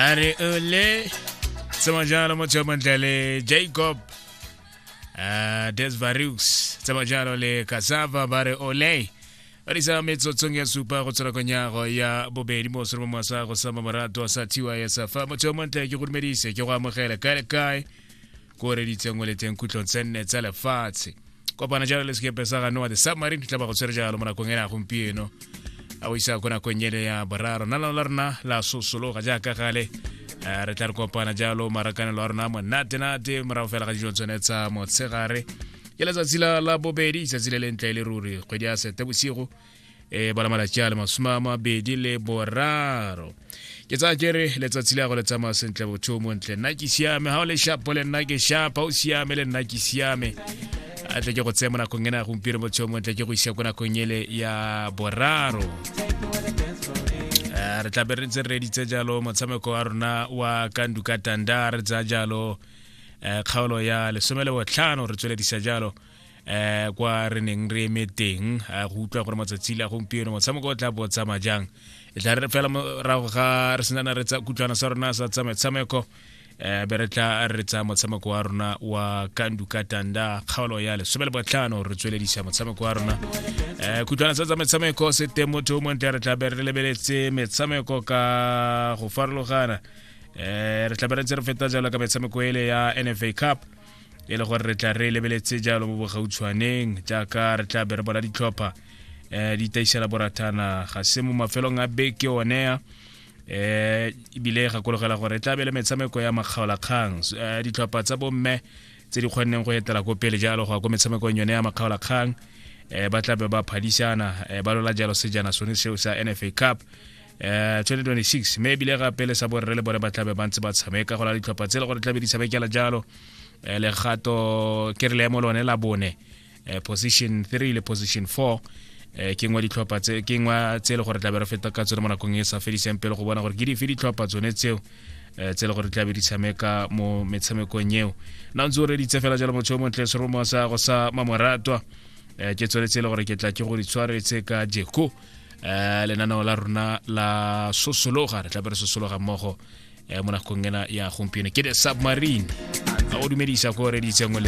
a re ole tsema jalo motho yo montle le jacob uh, desvarux tsema jalo le cassava ba re ole ba disa metsotsong ya supa go tswela konyago ya bobedi mo sore mo sa go sama morato sa tys fa motho yo montle ke go dumedise ke go amogele kae le kae ko reditseng o leteng khutlong tse nne tsa lefatshe kopana jalo le sekepe sa ganoa the submarine tla ba go tshwere jalo mo nakong ena gompieno a o isa ko nakong ele ya boraro na lano la rona la sosologa jaaka gale eh, re tla re kopana jalo marakanelo a rona monatenate morago fela ga dijo tsone tsa motshegare ke letsatsi la bobedi itsatsi le lentle le ruri kgwedi ya sete bosigo e bona malatsi a le masome a mabedi le boraro ke tsaya kere letsatsi le ya go le tsamaya sentle botho mo ntle nna ke siame ga o le shapo le nna ke shapa o siame le nna ke siame a tle ke go tseye mo nakong ena ya gompieno botsheo mo ntle ke go isa ko nakong ele ya boraro re tla be re ntse re reditse jalo motshameko wa rona wa kandu ka tanda re tsaya jalo kgaolo ya lesome le botlhano re tsweledisa jalo eh kwa re neng re eme teng eh, go utlwa gore matsatsi le a gompieno motshameko o tla bo tsamaya jang e tla re fela morago ga re senana re tsa kutlwana sa rona sa tsa metshameko um be re tla re tsa motshameko wa rona wa kandu ka tanda kgaolo ya lesome le botlhano re tsweledisa motshameko wa rona um kutlwana sa tsa metshameko se teng motho o montle re tla be re lebeletse metshameko ka go farologana um re tla be re ntse re feta jalo ka metshameko ele ya nfa cup e le gore re tla re lebeletse jalo mo bogautshwaneng jaaka re tla be re bona ditlhopha um di taisela borathana ga se mo mafelong a beke onea eh ibile gakologela gore e tla be le metshameko ya makgaolakgang eh, ditlhopha tsa bomme tse di kgonneng go etela ko pele jalo go ya ko metshamekong yone ya makgaolakgang eh ba tla be ba phadisana eh, ba lola jalo sejana sone seo sa nfa cup eh 2026 mme ebile ga pele sa borre le bone ba tlabe ba ntse ba tshameka go la ditlhopha tse le gore tlabe di tshamekela jalo eh, legato ke re leemo lone la bone eh, position 3 le position 4 eh, ke ngwa ditlhopha tse ke ngwa tse le gore tlabe re feta ka tsone mo nakong e sa fediseng pele go bona gore ke dife ditlhopha tsone tseo eh, tse le gore tlabe di tshameka mo metshamekong eo na ntse o reditse fela jalo motho yo montle seromo sa go sa mamoratwa eh, ke tsone tse le gore ke tla ke go di tshwaretse ka jeko um lenaneo la rona la sosologa re tlabe re sosologa mmogo um mo nakong ena ya gompieno ke the submarine a o dumedisa ko reditsengwe